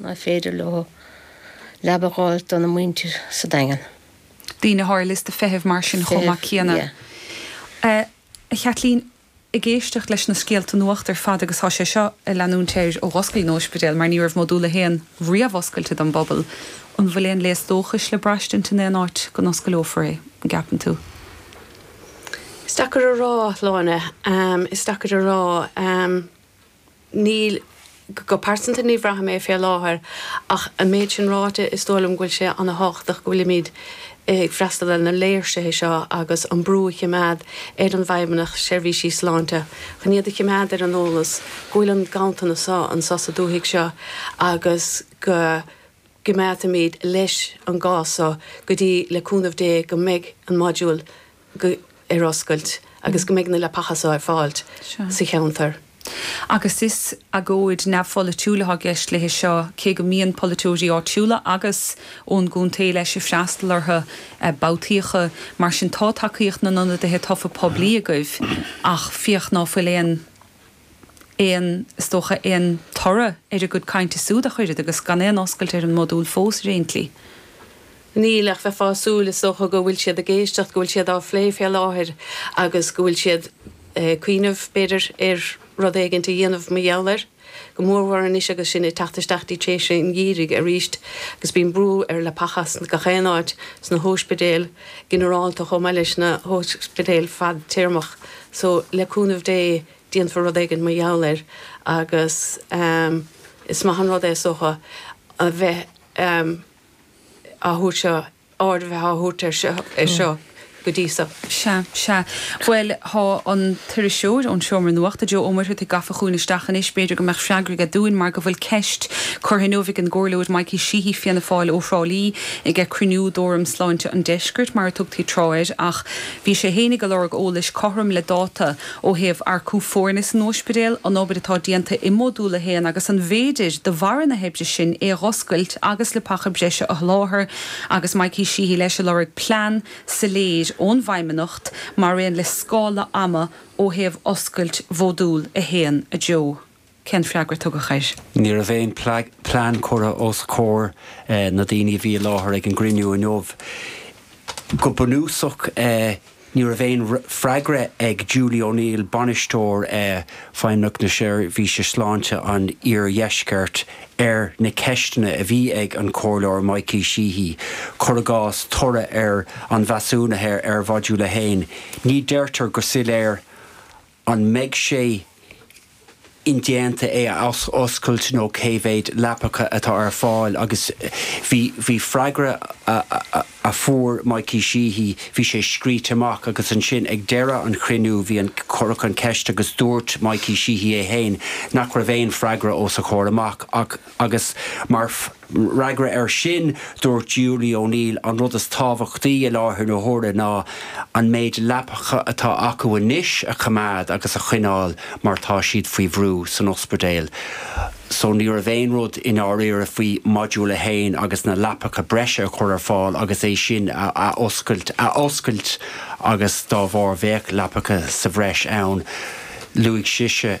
nach féidir leo leaba a dh'fháil dona muintir sa Daingean. daoine atá ar liosta feithimh mar sin chomh maith céanna. A Chaitlín, ag éisteacht leis na scéalta nuachta ar fad agus tá sé seo ag leanúint air ó dh'oscail an t-óispidéal mar ní raibh modúl a haon riamh oscailte don bpobal, an bhfuil aon léas dóchais le braistint in aon áit go n-oscaileofar é, an gceapann tú? Is deacair a rá, a Shláine, is deacair a rá. níl, go pearsanta ní bhraithim fé láthair ach an méid sin ráite is dóigh liom go bhfuil sé ana thábhachtach go bhfuilimid ag freastal ar na léirsithe seo agus an brú a chimeád ar an bhFeidhmeannacht seirbhísí sláinte chun iad a chimeád ar an eolas go bhfuil an ganntanas anso sa dúthaigh seo agus go gcimeádfaimid leis an gcás so go dtí le cúnamh Dé go mbeidh an module ar oscailt agus go mbeidh na leapacha seo ar fáil sa cheantar. Agus is agóid neamhpholaitiúil atá i gceist léithi seo, cé go mbíonn polaiteoirí áitiúla agus ón gcontae leis ag freastal orthu babhtaíocha. Mar sin tá tacaíocht na n-ionadaithe tofa poiblí agaibh ach féach ná fuil aon. aon, is dócha, aon toradh ar a gcuid cainte súd ach oiread agus gan aon oscailt ar an modúl fós ar aon tslí. Níl, ach bheifeá ag súil, is dócha, go bhfuil siad ag éisteacht, go bhfuil siad á phlé fé láthair agus go bhfuil siad ag cuimhneamh, b'fhéidir, ar rud éigint a dhéanamh mar gheall air, go mórmhór anois agus sinn ag teacht isteach dtí tréimhse an gheimhridh aríst agus bíonn brú ar leapachas in gach aon áit, sna hóispidéil ghinearálta chomh maith leis na hóispidéil fadtéarmach. So, le cúnamh Dé, déanfar rud éigin mar gheall air agus is maith an rud é, is dócha, a bheith á thabhairt seo, aird a bheith á thabhairt air seo go dtí so. Bhuel, tá an t-iriseoir ón seomra nuachta, Joe Ó Muircheartaigh gafa chugainn isteach anois, b'fhéidir go mbeadh freagra aige dúinn mar go bhfuil ceist curtha inniu ag an gcomhairleoir Mikey Sheehy, Fianna Fáil, ó Thrá Lí, ag cruinniú d'Fhóram Sláinte an Deiscirt, mar a tugtaí tráth air, ach Bhí sé féin ag lorg eolais cothrom le dáta ó thaobh earcú foirne san óispidéal, an obair atá déanta i Modúl a hAon agus an féidir, de bharra na hoibre sin, é a dh'oscailt agus leapacha breise a sholáthar, agus Mikey Sheehy leis ag lorg plean soiléir ón bhFeidhmeannacht mar aon le scála ama ó thaobh oscailt Mhodúl a hAon. A Joe. Cén freagra a tugadh air? Ní raibh aon plean curtha os comhair na daoine a bhí i láthair ag an gcruinniú inniu. Go bunúsach ní raibh aon freagra ag Julie O'Neill, Bainisteoir Feidhmeannacht na Seirbhíse Sláinte an Iardheiscirt, ar na ceisteanna a bhí ag an Chomhairleoir Mikey Sheehy, cuir i gcás, toradh ar an mheasúnú ar Mhodúl 1. Ní deirtear go soiléir an mbeidh sé indéanta é a athoscailt nó cé mhéad leapacha atá ar fáil agus bhí, bhí freagra a fuair Mikey Sheehy, bhí sé scríte amach agus ansin ag deireadh an chruinniú bhí an, cuireadh an cheist agus dúirt Mikey Sheehy é féin nach raibh aon freagra os a chomhair amach ach, agus mar. Mar fhreagra air sin, dúirt Julie O'Neill, An rud is tábhachtaí i láthair na huaire ná an méid leapacha atá acu anois a choimeád agus a choinneáil mar tá siad faoi bhrú san ospidéal. Só ní raibh aon rud i ndáiríre faoi Module 1 agus na leapacha breise a chur ar fáil agus é sin a oscailt agus dá bharr bheadh leapacha sa bhreis ann, luaigh sise.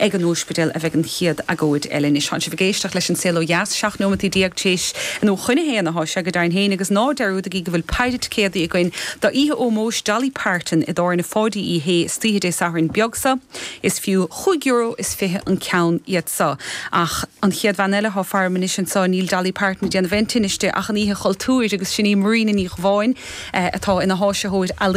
Ag an Óispidéal a bheidh an chéad agóid eile anois. Tánn sibh ag éisteacht leis An Saol Ó Dheas, 17 nóimeataí t'éis a nó chun a haon atá sé go deimhin féin agus ná dearúdaigí go bhfuil paidhre ticéadaí againn do oíche ómóis Dolly Parton i dTábhairne Pháidí Uí Shé istoíche Dé Sathairn beag seo. Is fiú chúig euro is fiche an ceann iad seo. Ach an chéad bhean eile atá faram anois anseo, níl Dolly Parton ag déanamh aon tinnis di ach an Oíche Chultúir agus sin í Marina Ní Dhubháin atá ina háisitheoir